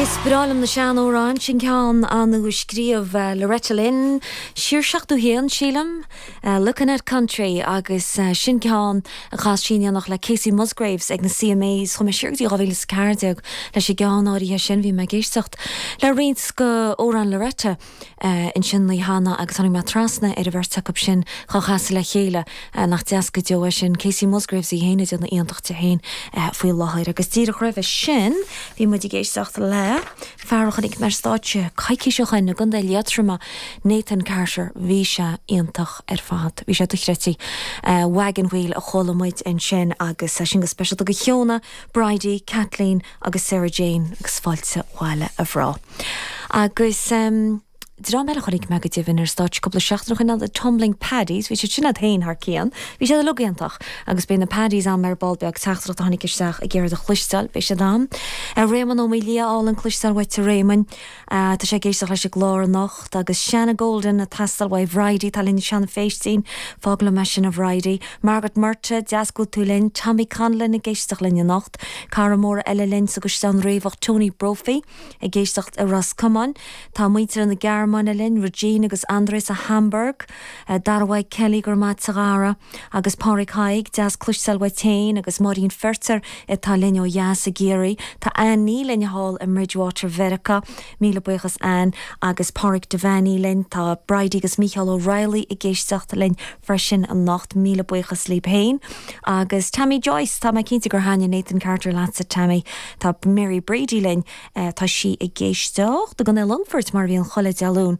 Is breá liom na sean-amhráin. Sin ceann nua a scríobh Loretta Lynn, siar 71, sílim. Lookin' at Country agus sin ceann a chas sí in éineacht le Kacey Musgraves ag na CMAs. Chuaigh mé siar go dtí 2014 leis an gceann áirithe sin. Bhí mé ag éisteacht le roinnt de amhráin Loretta. ansin an lá cheana agus tháinig mé trasna ar an bheirt acu sin ag casadh le chéile nach deas go deo é sin. Kacey Musgraves í féin ag déanamh iontais di féin faoi láthair agus díreach roimhe sin bhí muid ag éisteacht le fear a chonaic mé ar stáitse coicís ó shin i gContae Liatroma, Nathan Carter. Bhí sé iontach ar fad. Bhí sé dochreidte. Wagon Wheel a chuala muid ansin agus sin go speisialta do Shauna, Bridie, Kathleen, agus Sarah Jane agus fáilte abhaile a ghrá. Agus. dream eile a chonaic mé go deimhin ar stáitse cúpla seachtainí ó shin ná The Tumbling Paddies, bhí siad sin iad féin thar cionn, bhí siad uilig iontach. Agus beidh na Paddies ann mar ball beag teachtaireacht a tháinig isteach ag iarraidh iad a chloisteáil, beidh siad ann. Réamonn Ó Maolaodha álainn cloisteáil uait a Réamonn. Tá sé ag éisteacht leis an gclár anocht agus Shawna Golden ag teastáil uaidh. Bridie atá linn. Seán Feistín, fág liom é sin, a Bhridie. Margaret Murtagh, deas go bhfuil tú linn. Tommy Connellan ag éisteacht linn anocht. Cara mór eile linn sa gCaisleán Riabhach, Tony Brophy, ag éisteacht i Ros Comáin. Tá muintir na Gearmáine linn, Regine agus André sa Hamburg. Darragh Kelly, go raibh maith ad, a chara. Agus Pádraig Thaidhg deas cloisteáil uait féin agus Máirín Feirtéar atá linn ó dheas i gCiarraí, tá Annie linn thall i mBridgewater Mheiriceá, míle buíochas Anne, agus Pádraig Devanney linn, tá Bridie agus Mícheál O'Reilly ag éisteacht linn freisin anocht, míle buíochas libh féin. Agus Tammy Joyce, tá mé cinnte gur thaitnigh Nathan Carter leatsa Tammy, tá Mary Brady linn, tá sí ag éisteacht i gContae an Longfoirt mar a bhíonn chuile Dé Luain.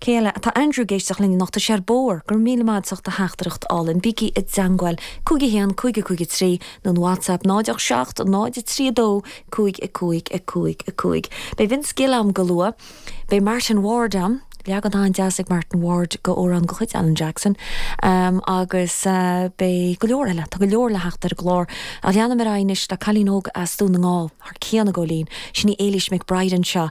Cé eile? Tá Andrew ag éisteacht linn anocht. Tá sé ar bóthar. Go raibh míle maith agat as do theachtaireacht álainn. Bígí i dteangmháil. 51 55 3 nó an WhatsApp 0 8 7 0 3 2 5 5 5 5. Beidh Vince Gill ann go luath. Beidh Martin Ward ann. Leagan an-deas ag Martin Ward de amhrán de chuid Alan Jackson. Agus beidh go leor eile. Tá go leor le theacht ar an gclár. Ach leanfaidh mé ar aghaidh anois le cailín óg as Dún na nGall, thar cionn, ag gabháil fhoinn. Sin í Éilís McBride anseo.